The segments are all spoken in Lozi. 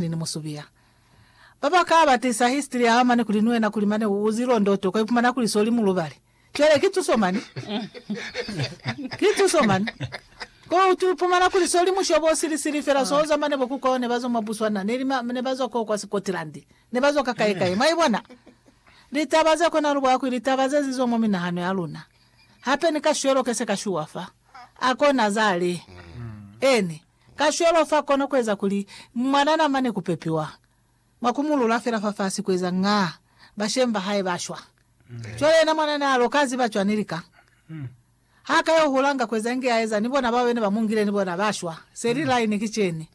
Ni ni musubiya. Ba ba ka ba tisa history ya mane kuli ni wena kuli mane u uzi londo uto ka ipumana kuli so li mulubali. Cwale ki tuso mane. Ki tuso mane. Ko uto ipumana kuli so li mushobo o sili sili fela so oza mane bo ku kwao ne ba zwa mwa Botswana ne li ne ba zwa ko kwa Scotland. Ne ba zwa ka kae kae. Mwa ibona? Litaba ze kona lu bwa kwi litaba ze zi zwa mwa minahano ya luna. Hape ni ka shwelo ke se ka shuwa fa. A kona za li. Eeni. Kacwalo fa kona kueza kuli mwana namane kupepiwa mwa kumulula fela fafasi kueza nga bashemi bahae bashwa. Cwale yena mwana nealo ka ziba cwani lika ha ka yo hula nga kueza inge aeza ni bona bao bene ba mungile ni bona bashwa? Seli line ki ceni.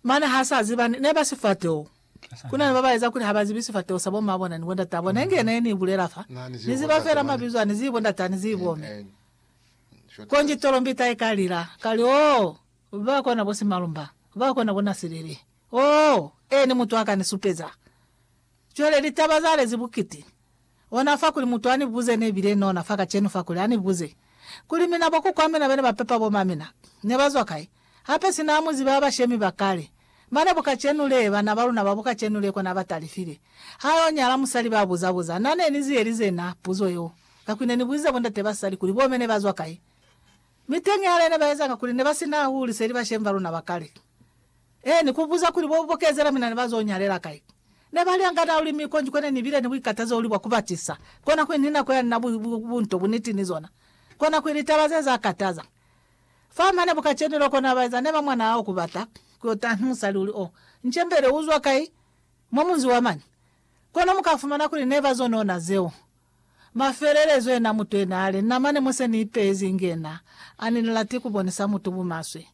Mane ha sa ziba ni neba sifateho. Kunani baba eza kuli haba zibi sifateho sa bo mabona ni bo ndatabona inge ne ni bulela fa. Ni ziba fela mabizo ani zibo ndatani zibo me. Konji tolombita i ka lila, kali, Oh, ba kona bo Simalumba, ba kona bo Nasilili. Oh, Ene mutu a ka ni supeza. Cwale litaba za lezi bukiti. Ona fa kuli mutu a ni buze, ne bile nona fa kacenu fa kuli, a ni buze, kuli, Mina bokuku ba mina bene ba pepa bo ma mina, ne ba zwa kai? Hape sina ha mu ziba ha bashemi ba kale, mane bu kacenu lee bana ba luna ba bu kacenu lee kona ba talifile. Ha yo nyala musali ba buza buza, Na ne ni zi elize na puzo yeo, kakuli ne ni buzize bo ndate ba sali kuli bo mene ba zwa kai. Mi teñi hale ne ba ezanga kuli ne ba sina ha huli seli bashemi ba luna ba kale. Ee, ni ku buza kuli bo bu bokezela mina ne ba zo nyalela kai. Ne ba lyanga na luli mi konji kone ni bile ni buikatazo uli bwa ku batisa. Kona kuli ni nako ya nina bu, bu, bu nto, bu niti ni zona. Kona kuli litaba ze za kataza. Fa mane buka cheni loko na baeza ne ba mwana hao kubata ku yo taha ni musali uli o nchembele uzwa kai mwa munzi wa mane. Kono muka fumana kuli ne ba zonona zeo. Mafelelezo yena mutu yena ale, Na mane mo se ni ipezi inge na, ani ni lati ku bonisa mutu bumaswe.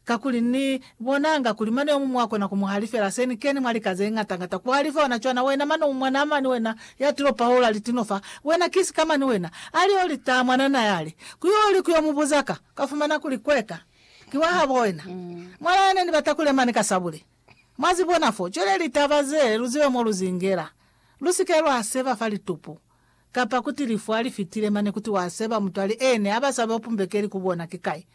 Kakuli Ni bonanga kuli mane yomuñwi wakona ku mu halifela se Ni kene mwa lika zeñata ngata ku halifa ona cwana, wena mane u mwanaa mani wena ya tilo pahola litino fa, wena ki sika mani wena, ali yo litaa mwanana yale, ku yo li ku yo mu buza ka, ka fumana kuli kweka ki wa habo wena, mwana ya ne ni bata ku le mane ka sabule. Mwa zi bona fo? Cwale litaba ze, lu zibe mo lu zi ngela. Lu si ke lwa seba fa litupu, kapa kuti lifu ha li fitile mane kuti wa seba mutu ali ene, ha ba sa be upumbekeli ku bona ki kai.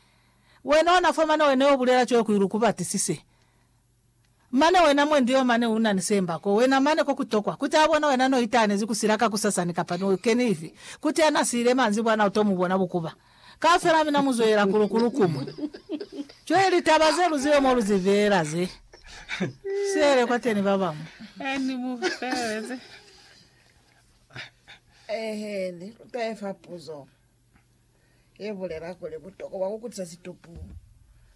Wena ona fa mane wena yo bulela cwale kuli lu ku batisise mane wena mwendi yo mane una ni semba ko wena mane ko ku tokwa kuti a bona wena no itahanezi ku sila ka ku sasani kapa no keni ifi kuti ya na siile manzibwana u to mu bona bukuba kaufela mina mu zwelela ku lu ku lu kumwe cwale litaba ze lu zibe mo lu zi veela ze sele kwa teni ba bamwi Eni mu feleleze. Ehe, ni tahe fa puzo. ye bulela kuli butokwa bwa ku kutisa situpu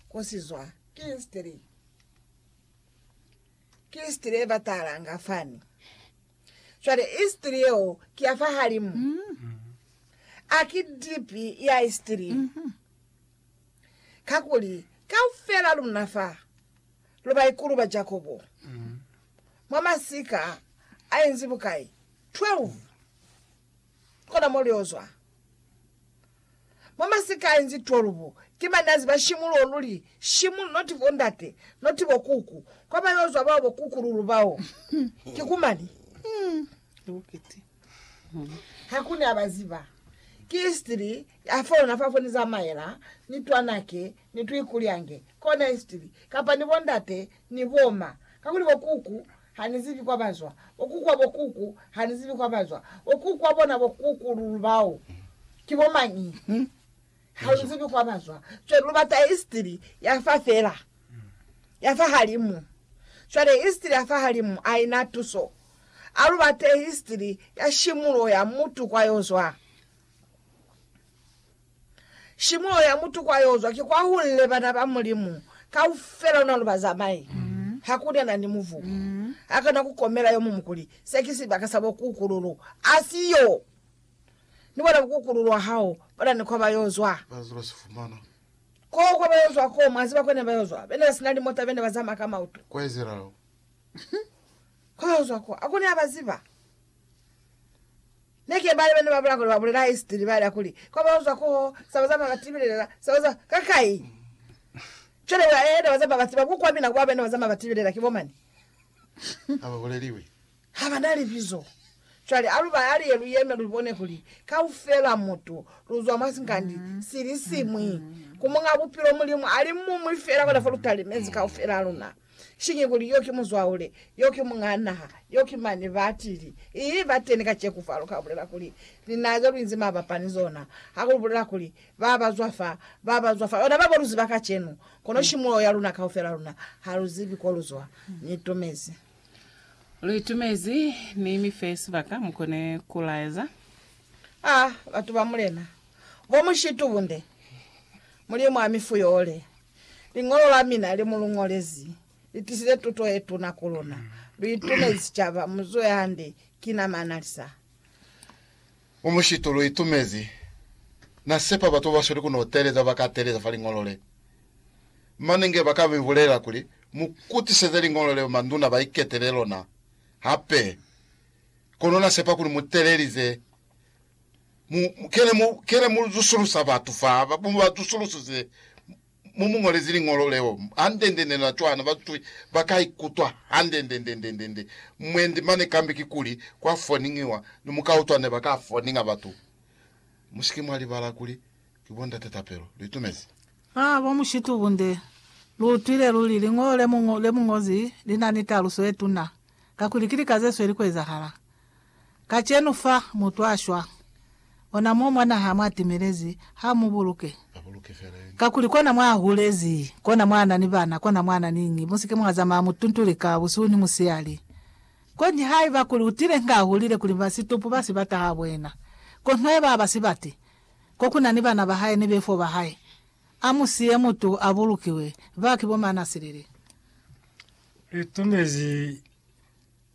ko si zwa ki histiri. Ki histiri ye batalanga fani. Cwale histiri yeo ki ya fahalimu. Mm. A ki dipi ya histiri. Mm -hmm. Kakuli kaufela luna fa lu baikulu ba Jakobo. Mm. Mwa masika a inzi bukai? 12. Kona mo lyo zwa. Mwa masikai nzi 12, ki mane ya ziba shimu luo luli shimu, not bo ndate, not bo kuku. Kwa ba yo zwa bao bo kuku lulu bao. Ki ku mani. Ha ku ne a ba ziba. Ki history ya fo luna fa fo ni zamaela, ni twanake, Ni twi kulyange, kona istili, kapa ni bondate ni boma. Kakuli bo kuku ha ni zibi kwa bazwa, bo kuku wa bo kuku ha ni zibi kwa bazwa, bo kuku wa bona bo kuku lulu bao ki bo mañi ha lu zibi kwa bazwa. Cwale lu bata istili ya fa fela, ya fa halimu. Cwale istili ya fa halimu aina tuso. A lu bate istili ya shimulo ya mutu kwa yo zwa. Shimulo ya mutu kwa yozwa ki kwa hunle bana ba Mulimu kaufela ona lu bazamai. Hakuna nani muvu akona kukomela yomumu kuli, Se ki sibaka sa bukukululu. Asiyo! Ni bona bukukululu wa hao bona ni kwa ba yozwa. Ko kwa ba yozwa ko, mwa ziba kone ba yozwa, bene ba sina limota, bene ba zama ka mautu. Kwa yozwa ko, akuna ya ba ziba. Neke bali bana babula kuli babulela history baela kuli kwa bauzwa kuho saba zama batibilelela saba za kakai cwale ba yena bazama baziba ku kwa mina kuba bena bazama batibilela kibo mani haba buleliwi habana libizo cwale aluba aliye luyeme lubone kuli kaufela mutu luzwa mwa sinkandi silisimwi ku munga bupilo mulimu ali mumwi fela kona fo lutalimezi kaufela luna Sinye kuli yo ki muzwaule, yo ki muñaa naha, yo ki mane batili. I ba teni kaceku fa lu ka bulela kuli, Linake lu inzi mabapa ni zona. Ha ku bulela kuli, Ba ba zwa fa, ba ba zwa fa. Luna ba ba lu ziba kacenu, kono shimuloho ya luna kaufela luna ha lu zibi ko lu zwa. Ni itumezi. Lu itumezi. Ni mi fe sibaka mu kone ku laeza. A batu ba Mulena, bo mushitubunde, Mulimu a mi fuyole. Liñolo la mina le mu lu ñolezi li tisize tuto ye tuna ku luna. Lu itumezi sicaba. Mu zuhe hande. Ki na manalisa. Mu mushitu lu itumezi. Na sepa batu ba ba sweli ku no teeleza ba ka teeleza fa liñolo le. Mane nge ba ka mi bulelela kuli, Mu kutiseze liñolo leo manduna ba iketele lona hape. Kono na sepa kuli mu teelelize Mu, mu kele mu, kele mu zusulusa batu fa, ba, mu ba zusulusise, mu mu ngolezi liñolo leo, handendende na cwana, ba zwi, ba ka ikutwa handendendendendende. Mwendi mane kambe kikuli kwa foningiwa, ni mu ka utwa ne ba ka foninga batu. Musike mwa libala kuli ki bo Ndate Tapelo. Lu itumezi? Ha, bo Mushitu Bunde, lu utwile luli, liñolo le mu, le mu ngozi li na ni taluso ye tuna, kakuli ki lika ze sweli ku ezahala. Kacenu fa mutu a shwa, ona mo mwa naha mwa timelezi, ha mu buluke. Kakuli kona mwa hulezi, kona mwa na ni bana, kona mwa na ni ngi. Musike mwa zamaya mutuntu lika, busihu ni musihali. Konji haiba kuli utile nga ahulile kuli ba situpu ba sibata ha bwena, kono haiba aba sibati, ko kuna ni bana ba hae ni befo ba hae, a mu siye mutu a bulukiwe. Ba ki bo mana silili. Litumezi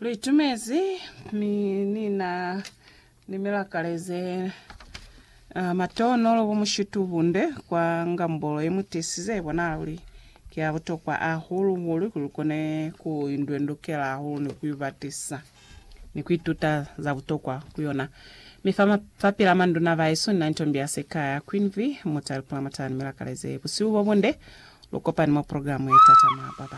Lu itumezi mi ni na ni milakale ze uh, matonolo bo mushitu bunde kwa ngambolo ye mutesi ze bona luli ki a butokwa ahulu hulu kuli kone ku indwendukela ahulu ni ku ibatisa ni ku ituta za butokwa ku yona. Mi fa, ma, fa pila manduna ba yesu ni na ntombi ya sekaya Queen V muta lipula matala ni milakale ze busihu bo bunde lu kopani mwa programu ye tatama baba.